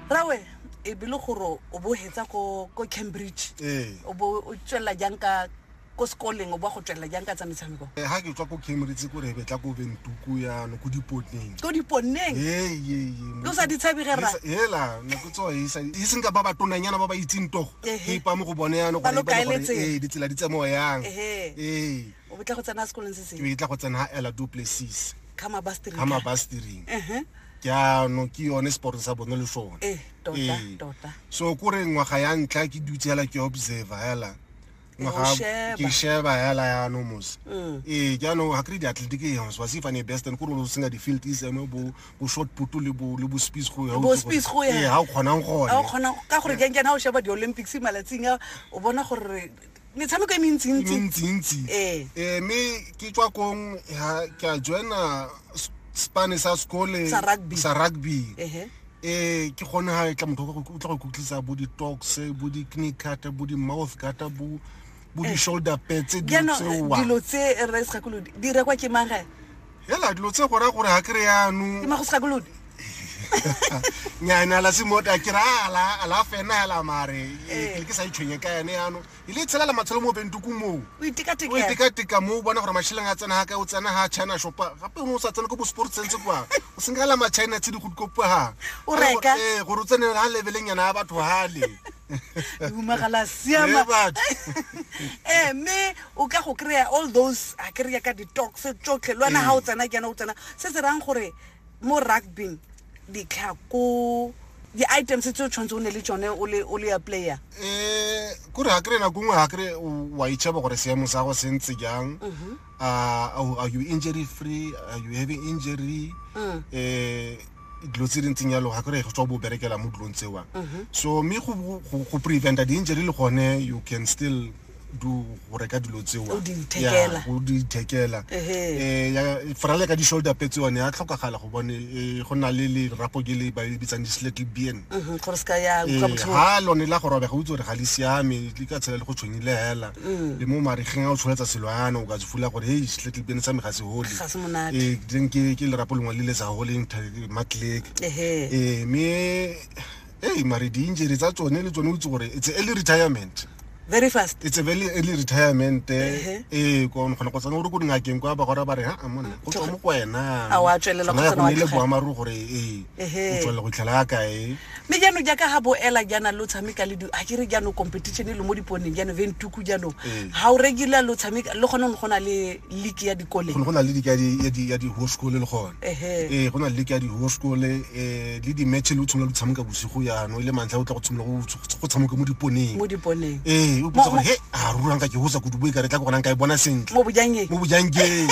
rawe e be le gore o bo hetsa ko ko cambridge ee o bo o tswelela jang ka ko sekoleng o bo go tswelela jang ka tsa metshameko Eh, ha ke tswa ko cambridge ko re betla ko bentuku yano ko dipoteng ko diponneng Ke o sa di tshabe ge rra? ela nako tsoa e sa- e seng ka ba batonanyana ba ba itseng togo Ehe. ke ipa mo go bone yano Ba lo kaeletseng. ee ditsela di tsemoa yang Ehe. ee o betla go tsena sekolong se sengwe ke tla go tsena ha ela du places ka mabastiring ka mabastiring ke a no ke yone sport sa bone le sone eh tota eh. tota so ko re ngwa ga ya ntla ke dutse hela ke observe hela ngwa ga ke sheba hela ya no mos mm. eh ke no ha kri di athletic e hons wasi fane best and ko no singa di field is emo bo bo short putu le bo le bo speed go ya bo speed go ya eh ha o khonang go ha o khonang ka gore ke nkena o sheba di olympics malatsing o bona gore metshameko e mentsintsi ee. ee mme ke tswa kong ke a joina spane sa sekole sa rugby eh ke gone ha e tla motho o tla go kutlisa bo di-tox bo di-knee cutter bo di-mouth cutter bo bo eh. di-shoulder petse dilo tseoa dilo tse re sa kolo di rekwa ke manggae hela dilo tse gora gore ga ke re yanong ke mago segakolodi nyana la semota ke rala ala fena hela mare eh. ke ke sa itshwenye ka yane yano e le tshelela matshelo mo bentuku moo o itekatika moo o bona gore masheleng a tsena ga ka o tsena ga china shopa gape o ne o sa tsena ko bo sport sense kwa o senkala machina tse di go dikopoga gore eh, o tsene ga lebeleng yana ya batho gale humagala siama ee mme o ka go kry-a all those a kry-a ka di-tox tsotlhe le wena ga o tsena ke yana o tsena se se rayang gore mo rugbing ditlhako di-items tse o tshwanetse o ne le tsone o le ya player um kore ga kry nako nngwe ga kry wa itšhaba gore seemo sa go sentse jang mhm. are you injury free are you having injury um dilo tse di ntseng yalo ga kry go tswa bo berekela mo dilong tsewa mhm. so mme go preventa di-injury le gone you can still do go reka dilo tsewa go di ithekela um frale ka di-shoulder petse one ya tlhokagala go bone eh, go na le lerapo ke le ba le bitsang di-slettle bien ga mhm, eh, lone la go robega o itse gore ga le siame le ka tshela le go tshwenyile fela le mo marigeng a o tsholetsa selo yana o ka se fula gore hei setlhetle pene sa me ga se hole Ga se monate. ee then ke ke lerapo lengwe le le sa holeng tha- matlek Ehe. ee mme ee mare di-injury tsa tsone le tsone o itse gore it's a early retirement very fast it's a very early retirement Ehe. ee ko kgona go tsena gore ko dingakeng kwa ba gora ba re ha a monna go tswa mo ko wena A wa tswelela go Tsona ya tsena wa gone e le tlogela. boammaaruri gore ee Ehe. o tswelela go itlhela ya kae mme jaanong jaaka ga boela jaana lo tshameka le di- a kere jaanong competition e le mo diponeng jaanong ventuku jaanong Mm. ga o regular lo tshameka le gone go na le league ya dikole go ne go na le leke ya di- ya di- ya di-high school le gone Ehe. ee go na le leke ya di-high school um le di-match le o tshimolola lo tshameka bosigo yano e le mantlha o tla go tshimolola go tsh- go tshameka mo diponeng mo diponeng ee o potsa Mo- gore he a ruranka ke hosa kudu boe ka re tla ke gonang ka e bona sentle mo bojangeng mo bojangeng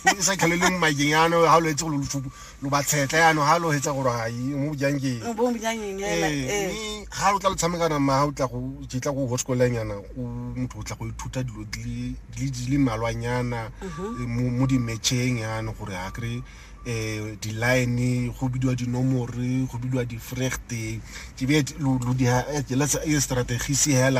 e sa tlhaleleng makeng ano ga o lo etse go lo lofupo lo ba tshetlha yaanong ga lo hetsa gore ga mo bojang keng bo bojang eng ela ee eh. mme ga lo tla lo tshamekana ma ga o tla go jetla go hosekolanyana o motho o tla go ithuta dilo di le- di le- di le malwanyana eh, mo mo di-matcheng yaanong gore ga kry um di-line go bidiwa dinomore go bidiwa di-fregte ke be lo lo di ha- eh, let's- eh, strategise hela